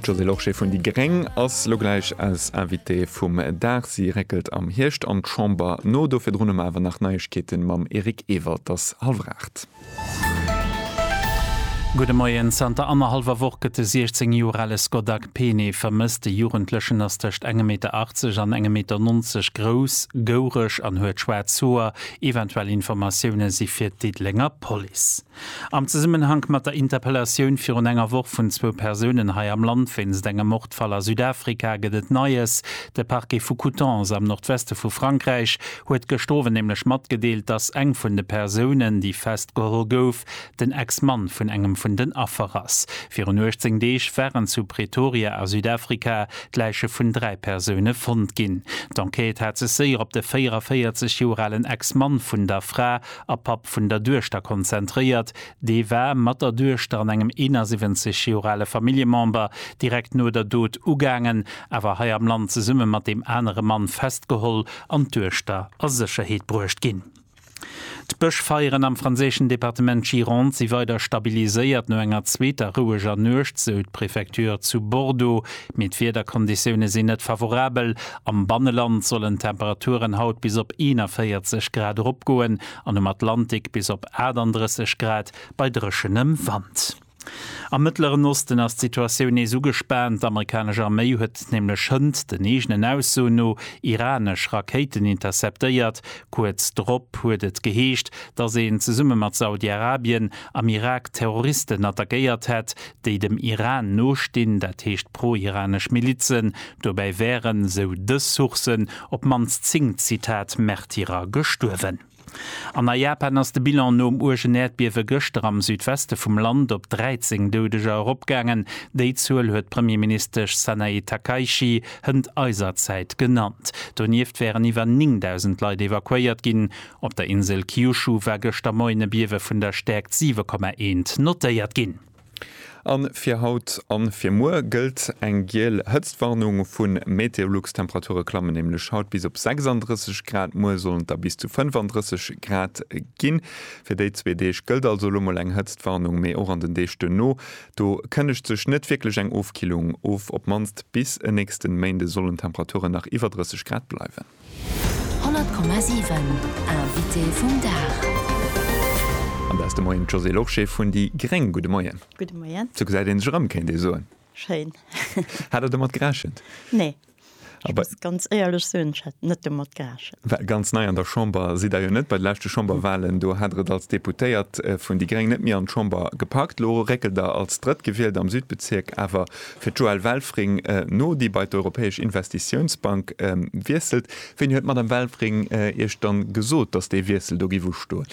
D'Josée Lorsché vun déi gréng ass lo gläich eis Invitée vum Dag. Si réckelt am Hierscht an d'Chamber no. Do virdrun hu mer awer nach Neiegkeete mam Eric Ewald. Et ass hallwer aacht. Gudde Moien. Zanter annerhallwer Woch gëtt de 16 Joer ale Scott Akpene vermësst. De Jugendlechen ass tëscht engem Meter 80 an engem Meter 90 grouss, goureg an huet schwaarz Hoer. Eventuell Informatioune si fir d'Diddelenger Police. Am Zesummenhank mat der Interpellatioun virun enger Woch vun zwou Persounen hei am Land wéinst engem Mordfall a Südafrika gëtt et Neies. De Parquet vu Coutances am Nordweste vu Frankräich huet gëscht Owend nämlech matgedeelt, datt eng vun de Persounen, déi festgeholl gouf, den Ex-Mann vun engem vun den Affer ass. Virun 18 Deeg waren zu Pretoria a Südafrika d'Läiche vun dräi Persoune fonnt ginn. D'Enquête hat sech séier op de 44 Joer alen Ex-Mann vun der Fra a Papp vun der Duechter, konzentréiert. Dee war mat der Duechter an engem 71 Joer ale Familljemember direkt no der Dot ugaangen, awer hei am Land zesumme mat deem anere Mann festgeholl an d'Duechter a Sécherheet bruecht ginn. D'Bëschfeieren am franséischen Departement Gironde si weider stabiliséiert no enger zweeter roueger Nuecht, sou d'Prefecture zu Bordeaux. Mee d'Wiederkonditioune sinn net favorabel Am Banneland sollen d'Temperaturen haut bis op 41 Grad eropgoen an um Atlantik bis op 38 Grad bei dréchenem Wand. Am Mëttleren Osten ass d'Situatioun nees ugespaant. D'Amerikanesch Arméi huet nämlech hënt den eegenen Aussoen no iranesch Rakéiten interceptéiert. Kuerz drop huet et geheescht, dass een zesumme mat Saudi-Arabien am Irak Terroristen attackéiert hätt, déi dem Iran nostinn, dat heescht pro-iranesch Milizen. Dobäi wären, sou dës Sourcen, op d'mannst 10, Zitat, Märtyrer gestuerwen. An a Japan ass de Bilan nom uergen Äerdbiewe gëschter am Südweste vum Land op 13 Doudeger eropgaangen. Déi Zuel huet d'Premierministesch Sanae Takaichi hënt eiser Zäit genannt. Donieft wären iwwer 9.000 Leit evakuéiert ginn. Op der Insel Kyushu war gëschter Moien e Biewe vun der Stäerkt 7,1 notéiert ginn. A fir haut a fir muer gëllt eng giel Hëtztwarnung vu Meteolux. D'Temperature klammen nämlech haut bis op 36 Grad, muer sollen et da bis zu 35 Grad ginn. Fir déi zwee Deeg gëllt also elo mol eng Hëtztwarnung, mee och an den Deeg duerno do kënnegt sech net wierklech eng Ofkillung of. Op mannst bis en nächste Méinde sollen d'Temperature nach iwwer 30 Grad bleiwen. 100,7 Invité vum Dag. An da ass de Moien d'Josée Lorsché vun déi gréng. Gudde Moien. Gudde Moien. Sou gesäit ee sech erëm, kéint ee soen. Schéin. Hat Der domat gerechent? Nee. Ech muss ganz éierlech soen, ech hat net domat gerechent. Well ganz nei an der Chamber sidd Der jo net. Bei de leschte Chamberwahlen, do hat Der et als Deputéiert vun déi gréng net méi an d'Chamber gepackt. Lo réckelt Der als Drëttgewielt am Südbezierk awer Fir d'Joëlle Welfring no, déi bei d'Europäesch Investitiounsbank wiesselt, wéini huet d'Madame Welfring Iech dann gesot, datt dee Wiessel do géif ustoen?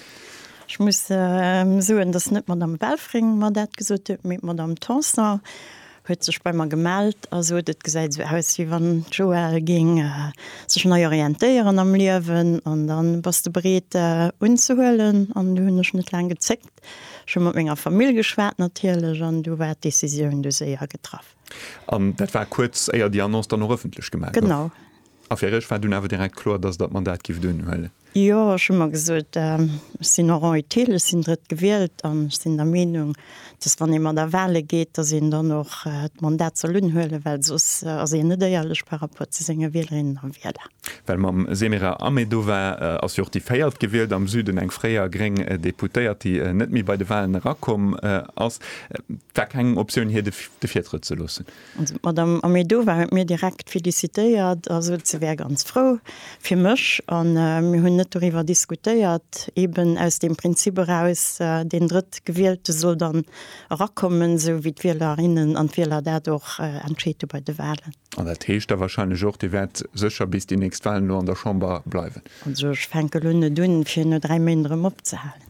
Ech muss soen, datt net d'Madame Welfring mer dat gesot huet, mee d'Madame Tanson huet sech bei mer gemellt a sot, et gesäit esou aus, wéi wann d'Joëlle géing sech nei orientéieren am Liewen an da bass de bereet unzehuelen. An du hunn ech net laang gezéckt. Ech hu mat menger Famill geschwat natierlech an du war d'Decisioun du séier getraff. An dat war kuerz éier déi Annonce dann och ëffentlech gemaach gouf? Genau. A fir iech war dunn awer direkt kloer, dass der d'Mandat gifft unhuelen? Jo, ech hu mer gesot, ech sinn en rang utile, ech sinn drëtt gewielt an ech sinn der Meenung, dass wann ee mat a Wahle geet, dass een dann och d'Mandat soll unhuelen, well soss ass een net éierlech par rapport zu senge Wielerinnen a Wieler. Well mam Semira Ahmedova ass jo och déi véiert gewielt am Süden, eng fréier gréng Deputéiert, déi net méi bei de Walen erakomm ass. Et war keng Optioun hir de Virtrëtt ze loossen. Also d'Madame Ahmedova huet mir direkt felicitéiert a sot se wär ganz frou fir mech. A mir hunn net doriwwer diskutéiert, eben aus deem Prinzip eraus, deen Drëttgewielte soll dann erakommen, esou wéi d'Wielerinnen an d'Wieler dat och entscheet hu bei de Walen. An dat heescht da wahrscheinlech och, Dir wäert sécher bis déi nächst Wahlen elo an der Chamber bleiwen? Also ech fänke elo net un, fir no dräi Méint erëm opzehalen.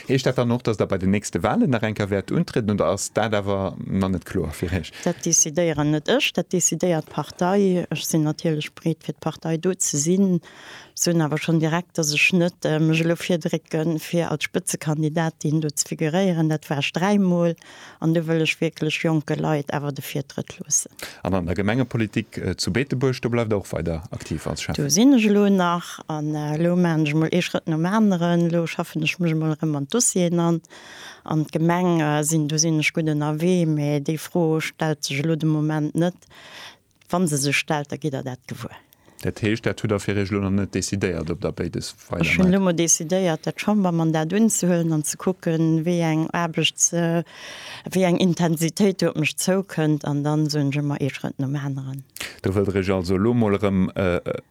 Heescht dat dann och, dass Der bei den nächste Wahlen nach eng Kéier wäert untrieden, oder ass dat awer nach net kloer fir Iech? Dat decidéieren net ech, dat decidéiert d'Partei. Ech sinn natierlech bereet, fir d'Partei do ze sinn, soen awer schonn direkt, dass ech net mech elo virdrécke fir als Spëtzekandidatin do ze figuréieren. Dat war ech dräi Mol. an do wëll ech wierklech jonke Leit awer de Virtrëtt loossen. An an der Gemengepolitik zu Beetebuerg, do bleift Der och weider aktiv als Schäffen? Do sinn ech elo nach an elo maachen ech emol ee Schrëtt nom aneren. Elo schaffen ech mech emol erëm an d'Dossieren an. An d'Gemeng sinn, do sinn ech gutt ënnerwee, mee déi Fro stellt sech elo de Moment net. Wann se sech stellt, da gitt Der dat gewuer. Dat heescht, dat hutt Der fir Iech elo nach net decidéiert, ob Der béides weidermaacht? Ech hunn elo mol decidéiert, dat Chambermandat unzehuelen an ze kucken, wéi eng Aarbechts-, wéi eng Intensitéit do op mech zoukënnt. An dann soen ech ëmmer ee Schrëtt nom aneren. Do wëllt Der Iech also elo mol erëm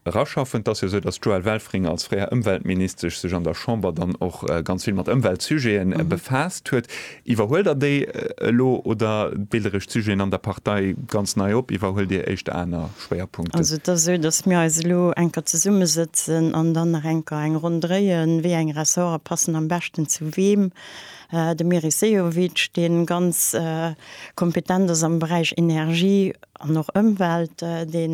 eraschaffen. Et ass jo esou, dass d'Joëlle Welfring als fréier Ëmweltministesch sech an der Chamber dann och ganz vill mat Ëmweltsujeten befaasst huet. Iwwerhuelt der déi elo oder deelt der iech d'Sujeten an der Partei ganz nei op? Iwwerhuelt dir éischt aner Schwéierpunkten? Also et ass esou, datt mir eis elo eng Kéier zesummesëtzen an dann nach eng Kéier eng Ronn dréien, wéi eng Ressorte passen am beschten zu wem. De Meris Sehovic, dee ganz kompetent ass am Beräich Energie, an och Ëmwelt, dee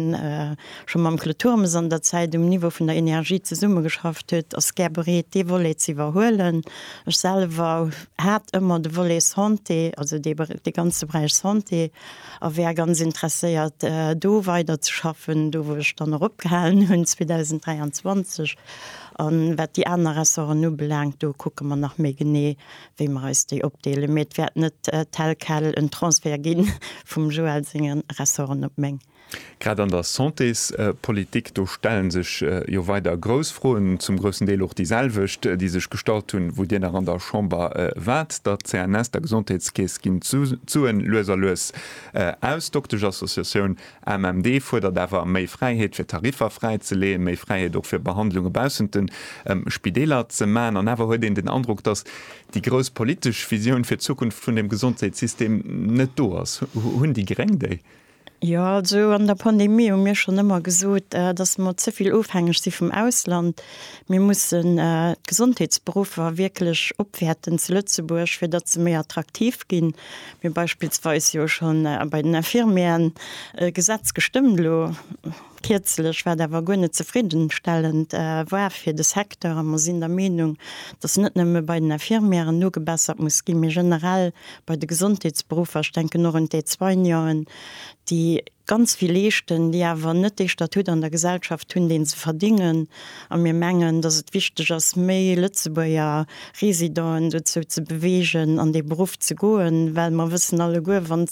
scho mam Claude Turmes an der Zäit um Niveau vun der Energie zesummegeschafft huet, ass gär bereet, dee Volet ze iwwerhuelen. Ech selwer hat ëmmer de Volet Santé, also dee ganze Beräich Santé, a wär ganz interesséiert, do weiderzeschaffen, do wou ech dann och opgehalen hunn 2023. An wat déi aner Ressorten ubelaangt, do kucke mer nach méi genee, wéi mer eis déi opdeelen, mee et wäert net tel quel en Transfert gi vum Joël senge Ressorten op meng. Grad an der Santéspolitik, do stelle sech jo weider grouss Froen, zum groussen Deel och déi selwecht, déi sech gestallt hunn, wou Dir nach an der Chamber waart. Der CNS, der Gesondheetskeess, ginn d'Suen lues a lues aus. D'Dokteschassociatioun AMMD fuerdert awer méi Fräiheet fir Tariffer fräi ze leeën, méi Fräiheet och fir Behandlunge baussent de Spideeler ze maachen. An awer huet een den Androck, datt déi grouss politesch Visioun fir d'Zukunft vun dem Gesondheetssystem net do ass. Hunn déi Gréng déi? Jo, also an der Pandemie hu mir schonn ëmmer gesot, datt mer ze vill ofhängeg si vum Ausland. Mir mussen d'Gesondheetsberuffer wierklech opwäerten zu Lëtzebuerg, fir datt se méi attraktiv ginn. Mir hu beispillsweis jo schonn bei den Infirmieren e Gesetz gestëmmt, elo kierzlech, wat awer guer net zefriddenstellend war fir de Secteur. A mer sinn der Meenung, dass net nëmme bei den Infirmieren nogebessert muss ginn, mee generell bei de Gesondheetsberuffer, ech denken och un d'Aide-soigneuen, déi ganz vill leeschten, déi awer net dee Statut an der Gesellschaft hunn, deen se verdingen. A mir mengen, datt et wichteg ass, méi Lëtzebuerger Residenten dozou ze beweegen, an dee Beruff ze goen, well mer wëssen alleguer, wann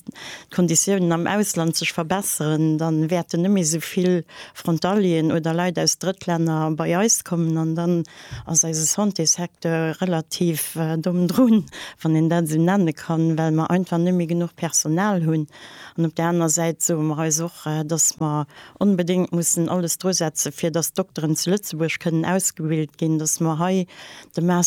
d'Konditiounen am Ausland sech verbesseren, da wäerten net méi esou vill Frontalieren oder Leit aus Drëttlänner bei eis kommen an dann ass eise Santésecteur relativ domm drun, wann een dat esou nenne kann, well mer einfach net méi genuch Personal hunn. An op där aner Säit soe mer eis och, dass mer onbedéngt mussen alles dru setze fir dass d'Dokteren zu Lëtzebuerg kënnen ausgebilt ginn, dass mer hei de Master,